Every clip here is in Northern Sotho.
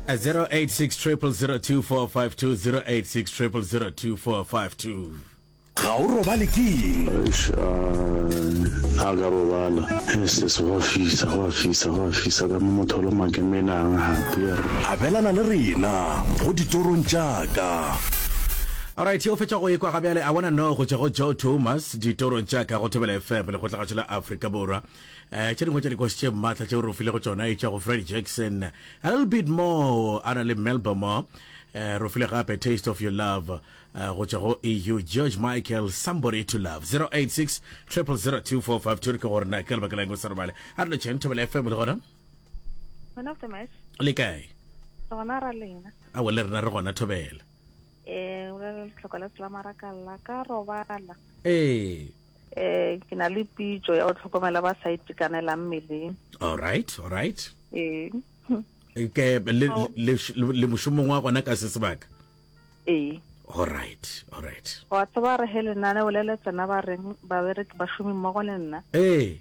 086 0002452 086 0002452 ga o robale ke eng a ka robala ss go fisa go fisa go fisa ka mo motho lo makemenang gape abelana le rena go ditorong jaaka Alright, yo fetša go ekwa ga bjale a bona no go tšwa go Joe Thomas ditorong tša ka go Thobela FM le go tlagatšo la Afrika Borwa. um tše dingwe tša dikosi tše maatla tšeo re o filego tsona e tša go fred jackson a little bit more a na le melbomo um eh, ro file gape taste of your love eh, go tswa go eu george michael somebody to love 086 000245 re ke gore na ke lebaka la eng o sa robale a re lotšheng thobela fm le gona le kae a wele rena re gona thobela ee o le letlhoko la selamara ka lla ka robala ee eh ke na le pitso ya go tlhokomela ba sa itekanelang mmeleng all right all right eh ke le le le moshomong wa gona ka se sebaka eh all right all right wa tsaba re he lenane o lele tsena ba reng ba bereke ba shumi mmogo le nna eh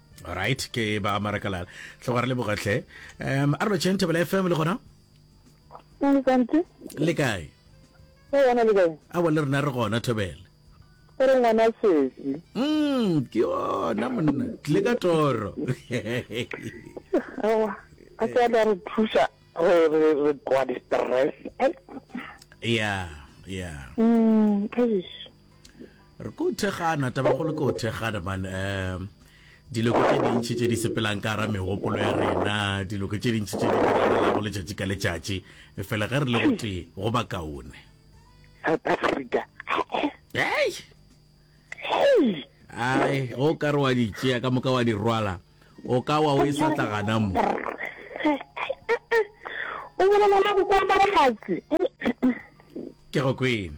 right ke ba marakalala tlo ga re le bogatlhe um a re lotšheng thebela fm le gona le kae a wa le rena re gona thobela ore ngwana sesi mm ke yona monna tle ka toro awa a ka da re thusa re re re kwa di stress yeah yeah mm re ko thekgana tabagolo ko thekgana man um diloko tše dintšhi tše di sepelang ka gara megopolo ya rena diloko tše dintšhi tše diago letšatši ka letšatši e fela ge re le gotee go ba kaone south africa ai ai go ka re wa di tšea ka moka wa di rwala o ka wa o e sa tla gana mo o bolela la go kwa ke go kwena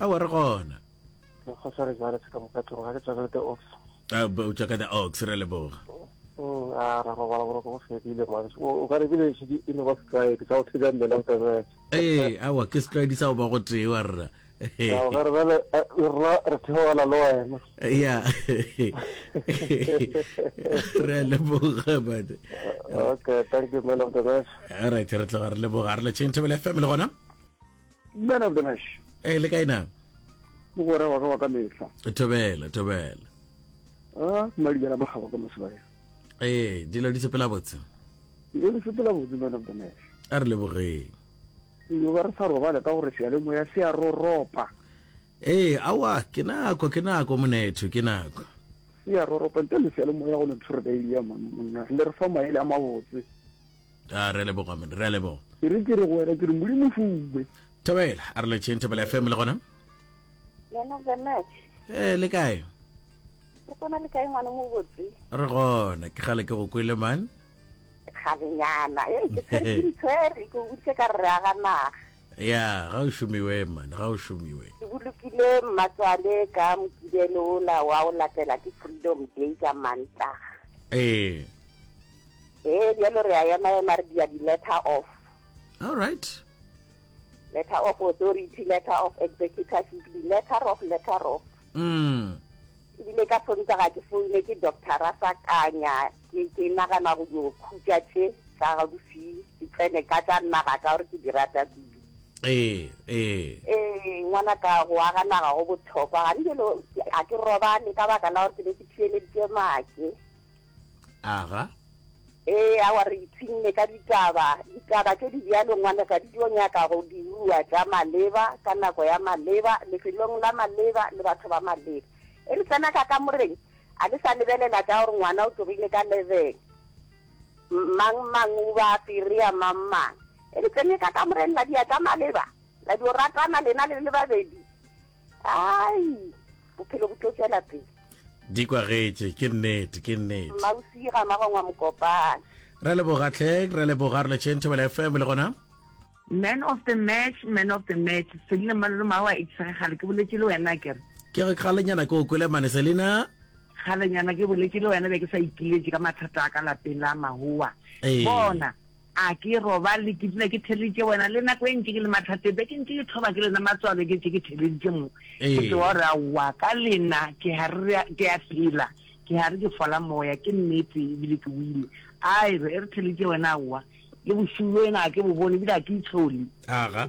awa re gona o tšwa ka the ox re leboga ee awa ke setlwaedi sa go ba go tee wa rra ya re a leboga bane alright re tloga re leboga re le chain table fm le gona man of the match e le kae na mogwera wa ka wa ka mehla thobela thobela a madibela ba gaba ka mosebaya ee dilo di sepela botse dilo di sepela botse man of the match a re lebogeng yo ba re sa robale ka gore sealemoya se a roropa ee awa ke nako ke nako monetho ke nako se a roropa ntle le sealemoya go ne tshore ka ile ya monna le re fa maele a mabotse a re leboga mone re a leboga ke re ke re go wena ke re modimo fuwe thobela a re le tšheng thobela fm le gona lena benet ee le kae le kona le kae ngwana mo botse re gona ke gale ke go kwele man kgalenyana e ke tshwere ke tshwere ke butse ka re aga naga ya ga o šomiwe man ga o šomiwe ke bolokile mmatswale ka mokibelo ola wa o latela ke freedom day ka mantlaga ee ee bjalo re a ema ema re dia di-letter of all right letter of authority letter of executorship di-letter of letter of mm ebile ka sonta ga ke foune ke doctora sa kanya ke nagana go yo khutša tše tsa gaufi ke tsene ka tša naga ka gore ke di rata kudu ee ee ee ngwana ka go aga naga go bothokwa ga ndilo a ke robane ka baka la gore ke be ke thieleditše make aga. Ee, awa re ipshinne ka ditaba. Ditaba tše di bjalo, ngwanaka, di tlo nyaka go diruwa tša maleba, ka nako ya maleba, lefelong la maleba, le batho ba maleba. E re tsena ka kamoreng, a le sa lebelela tša gore ngwana o tsogile ka lebeng, mang mang o ba firea mang mang. E re tsene ka kamoreng, la dia tša maleba, la dio ratana lena le le babedi. ai bophelo bo tlo tswela pele di kwagetše ke nnete ke nnete mmausi ga magongwa mokopane re leboga tlheng re leboga re letšheng thobela fm le gona man of the match man of the match selina malolo mawa e tshege gale ke boletse le wena kere ke re kgalenyana ke o kwele mane selina kgalenyana ke boletse le wena be ke sa ikiletše ka mathata a ka lapeng la mahowa bona A ke robale, ke dula ke theleditše wena, le nako e ntši ke le mathateng, be ke ntše ke thoba ke lena matswalo, ke ntše ke theleditše mo. Ke tloga gore, Aowa, ka lena ke hare ke a phela, ke hare ke fola moya, ke nnete, e bile ke wile. A re, e re theleditše wena, aowa, le bošego bjo wena ga ke bo bone, e bile ga ke itshole. Aga,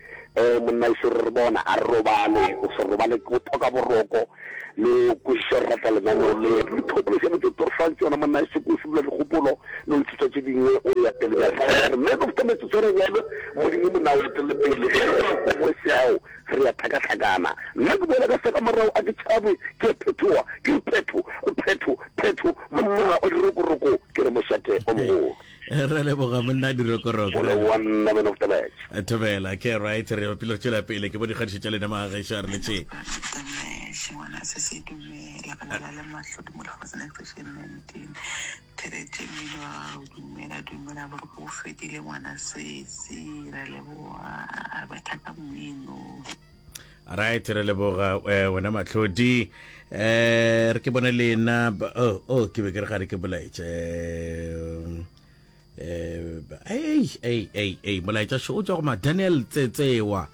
Ee, monna ešo re re bona, a re robale, o se robale ke botoka boroko, le o kwešiše go rata lenaneo le. Dikgopolo tše botse toro fang tšona, monna ešo ke o šibola dikgopolo, le go ithuta tše dingwe, o eya pele bjang. Father, man of the metsotso e menyane, Modimo monna o etelele pele, ge re sa kongwe seao, re ya hlakahlakana. Nna ke boela ka seka morago, a ke tšhabe, ke ya phethoga, ke re phetho, phetho, phetho, monna o dirokoroko, ke re mošate o mogolo. re leboga monna dirokoroko thobela ke right re bapile go tšwela pele ke bo dikgadišo tša lena magageso a re letšeng right re leboga eh, wena matlhodi um re ke bone lena oh, oh ke be ke re ga re ke bolaetše um ei molaetša šo o tswa go madaniel tsetsewa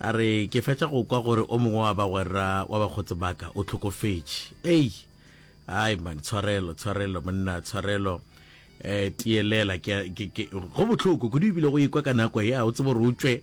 a re ke fetša go kwa gore o mongwe wa bagwerra wa bakgotsi baka o tlhokofetše ei ai man tshwarelo tshwarelo monna tshwarelo um tielela go botlhoko kudu ebile go ikwa ka nako ya o tsebo re utswe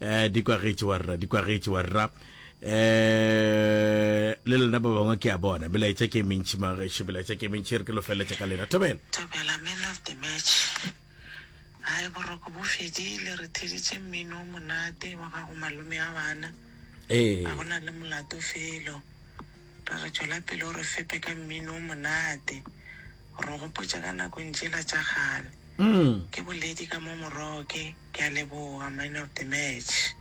eh di kwagetše wa rra di kwagetše wa rra eh le lena ba bangwe ke a bona belaetša ke mentši mageše belaetša ke mentši re ke lo feleletša ka lena thobela thobela man of the match gae boroko bo fedile re theditše mmino o monate wa gago malome a bana ee ga gona le molato felo re re tswela pele o re fepe ka mmino o monate Ro gopotša ka nakong tšela tša kgale. Ke boledi ka mo moroke. Ke a leboga man of the match.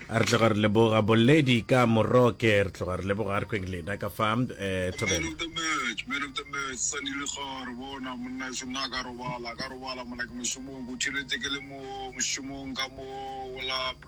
Re tloga re leboga boledi ka moroke. Re tloga re leboga re kweng lena ka fa eh, Man of the match, man of the match, Sani Lekgare, bona monna šo nna ka robala, ka robala mona ke mošomong, ke utheletse ke le mo mošomong ka mo, o lap.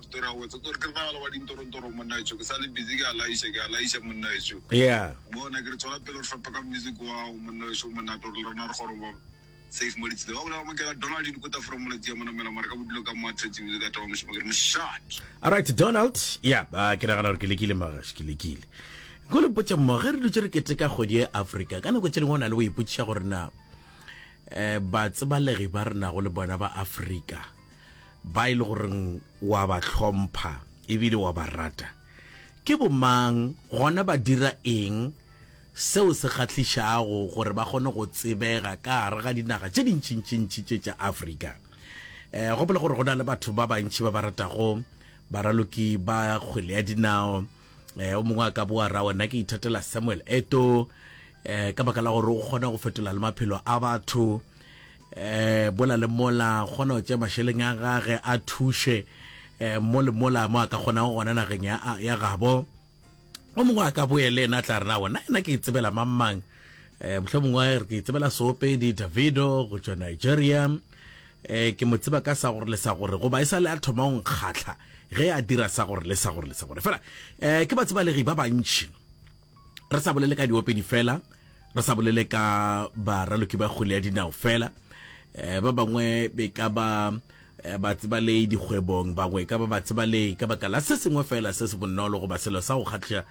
Alright Donald, yeah, uh, ke nagana gore ke lekile magash, ke lekile. Go le potsa mo ge re dutse re keteka kgwedi ya Africa, ka nako tse dingwe o na le go ipotsiša gore na eh ba tsebalegi ba rena go le bona ba Africa ba e le goreng wa ba hlompha e bile wa ba rata? Ke bomang, gona ba dira eng seo se kgahlišago gore ba kgone go tsebega ka gare ga dinaga tše dintšintšintši tše tša Afrika? E, gopola gore go na le batho ba bantši ba ba ratago baraloki ba kgwele ya dinao. E, o mongwe a ka boa ra wena ke ithatela Samuel Eto e, ka baka la gore o kgona go fetola le maphelo a batho. eh bola le mola kgona go tšea mašeleng a gage a thuše eh mo le mola mo a ka kgonago gona nageng ya, ya gabo o mongwe a ka boye le ena tla rena gona ena ke itsebela mang mang eh mohlho mongwe re ke itsebela soopedi davido go tšwa nigeria eh ke mo tseba ka sa gore le sa gore goba e sa le a thoma go nkgatlha ge a dira sa gore le sa gore le sa gore fela eh ke ba tseba legi ba bantši re sa bolele ka diopedi fela re sa bolele ka baraloki ba kgwele ya dinao fela um ba bangwe be ka ba eh, ba tseba le dikgwebong bangwe e ka ba ba tseba le ka baka la se sengwe fela se se bonolo goba selo sa go kgatlha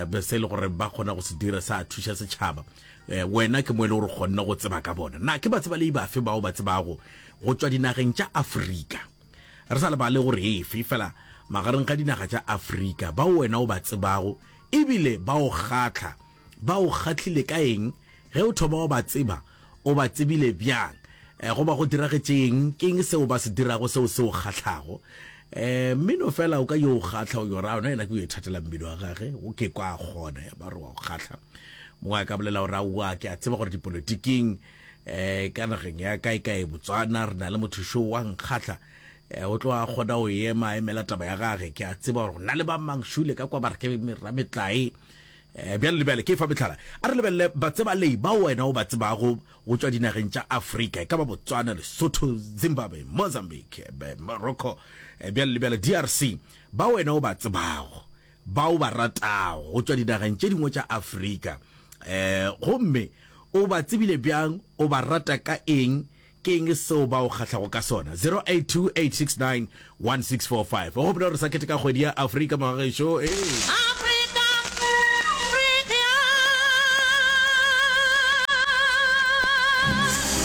um se e le gore ba kgona go se dira sa thuša setšhaba um wena ke mo e le gore kgonne go tseba ka bona na ke ba tseba le ibafe bao ba tsebago go tšwa dinageng tša afrika Re sa lebale gore efe fela magareng ga dinaga tša Afrika bao wena o ba tsebago e bile ba o kgahla, ba o kgahlile ka eng? Ge o thoma wa ba tseba, o ba tsebile bjang? Goba go diragetše eng? Ke eng seo ba se dirago seo se o kgahlago? Mmino fela o ka yo o kgahla, o yo ra ona yena ke yo ithatela mmino wa gage, o ke kwa a kgona ya ba re wa o kgahla. Mongwe a ka bolela gore aowa, ke a tseba gore dipolotiking eh ka nageng ya kae kae Botswana re na le motho šo wa nkgahla eh, o tloga kgona go ema a emela taba ya gage ke a tseba gore na le ba mang šule ka kwa ba re ke rametlae eh, bjale le bjale ke fa metlhala a re lebelele batsebalei ba wena o ba tsebago go tswa dinageng tša afrika e ka ba botswana lesotho zimbabwe mozambique eh, be- morocco eh, bjale le bjale drc ba wena o ba tsebago ba o ba ratago go tšwa dinageng tše dingwe tša Afrika, um gomme o ba tsebile bjang? O ba rata ka eng? Ke eng seo ba o kgahlago ka sona? 0828691645. O gopole gore sa keteka kgwedi ya Afrika mengwaga gešo e.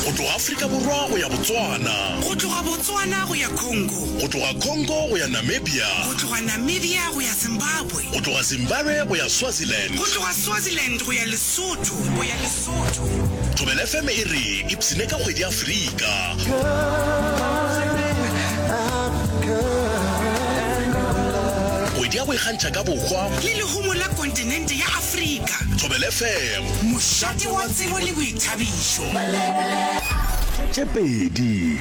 Go tloga Afrika Borwa go ya Botswana. Go tloga Botswana go ya Congo. Go tloga Congo go ya Namibia. Go tloga Namibia go ya Zimbabwe. Go tloga Zimbabwe go ya Swaziland. Go tloga Swaziland go ya Lesotho, go ya Lesotho. Thobela FM e re ipsine ka kgwedi ya Afrika. Kgwedi ya go ikgantšha ka bohwa. Le lehumo la kontinente ya Afrika. Thobela FM. Mošate wa tsebo le boithabišo. Tše pedi.